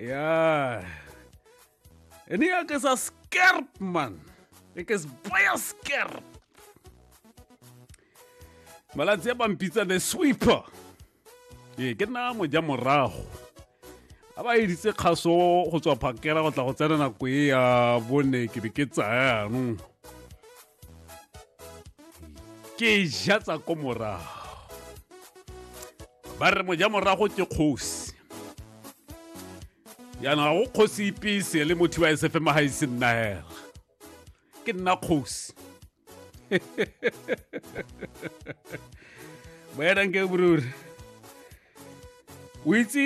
ja. En ek is as skerp man. Ek is baie skerp. Maar laat se bam pizza the sweeper. Ye ke na mo ja morago. Aba e ditse khaso go tswa phakela go tla go tsena nako e ya bone ke be ke tsaya no. ke ja tsa ko morago ba re moja morago ke kgosi jaanong ga go kgosi ipese le motho wa esefe ma ga ise nna hela ke nna kgosi boyananke boruri o itse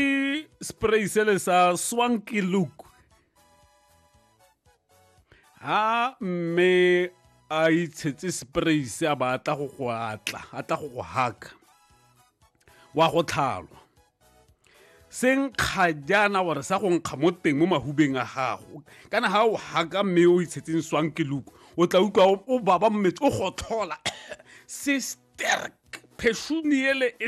spray sele sa swanky look ha mme a itshetse spray se a ba atla go go atla a tla go go haka wa go tlhalwa se nkga jaana gore sa go nkga mo teng mo mahubeng a gago kana ga o haka mme o itshetseng swang ke luku o tla utlwa o baba mmetsi o gotlhola se sterk pheshumi ele e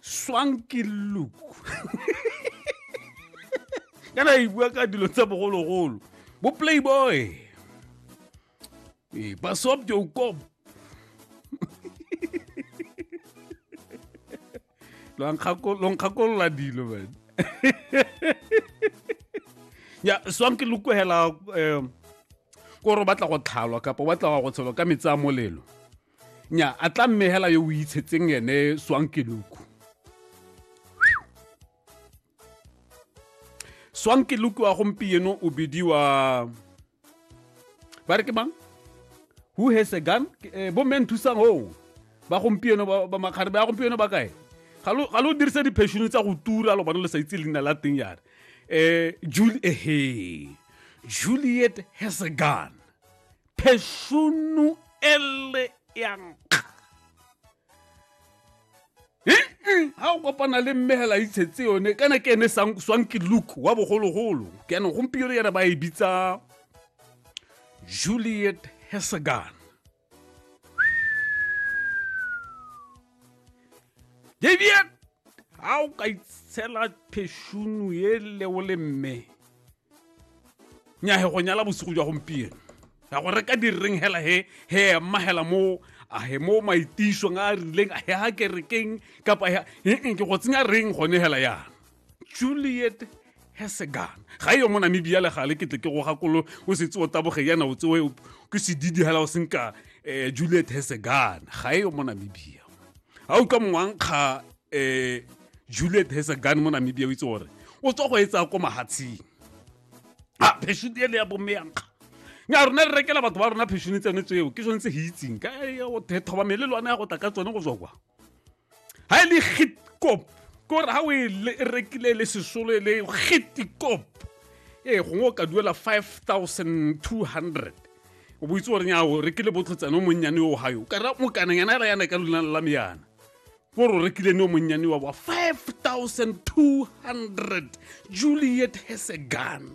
swanky look kana e bua ka dilo tsa bogologolo bo playboy ee basop jokob lonkgakolola dilo man ya swanky look hela um kore o batla go tlhalwa kapa o batla go tshelwa ka metsi a molelo nya a tla mme hela yo o itshetseng ene swankeluku swankeluku wa gompieno o bidiwa ba re ke mang who has a gun eh, bo men thusang o ba gompieno ba makgare ba gompieno ba kae ga lo dirisa diphešono tsa go tura lo bana le sa itse leina la teng yare um eh, jule ehe juliet has a gun phešono ele ya nkga ga o kopana le mmegela itshetse yone kana ke ene swanke luke wa bogologolo ke ene gompieno yana ba e bitsa juliet hesegan daviet ga o ka itshela phešono ele o le mme nyahe go nyala bosigo jwa gompieno ya go reka direng hela he he emma hela mo a he mo maitišong a a rileng a he ha kerekeng kapa he ee ke go tsenya reng gone hela yana juliet hesegan ga eyo mo namibia le gale ke tle ke go gakolo o setse o taboge yana o tsewe ke sedidi hela o senka um juliet hesegan ga eyo mo namibia ga o ka mongwankga um juliet has a gun mo namibia o itse gore o tswa go etsa ko mahatsheng a pheshone ele ya bomme yankga nya rona re rekela batho ba rona pheshone tsone tseo ke sone tse ge itseng ka thoba mele le one ya go tla ka tsone go tswa kwa ga e le gitkop kore ga o e rekile le sesolo e le gitkop ee gongwe o ka duela 5200 o boitse gore nya o rekile botlhotsane o monnyane o gayo ka ra mokaneng yana ela yana ka lona la meyana ko re o rekileng yo monnyane wa wa 5200 juliet hesegan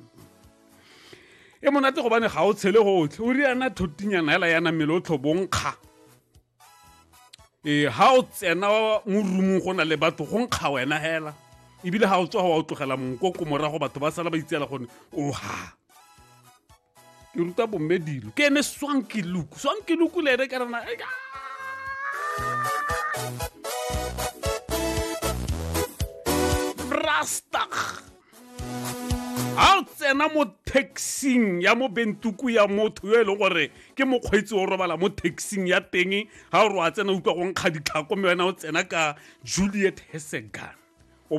e monate gobane ga o tshele gotlhe o riana thotinyana hela yana mmele o tlhobonkga ee ga o tsena mo rumong go na le batho go nkga wena hela ebile ga o tswa go wa o tlogela monkoko morago batho ba sala ba itseela gone oha ke ruta bomme dilo ke ene swanke luku swanke luku le ene ka rena brastak a o tsena mo taxing ya mo bentuku ya motho yo e leng gore ke mokgweetsi o robala mo taxing ya teng ga o re wa tsena utlwa go nkga ditlhako mme wena o tsena ka juliet hesegan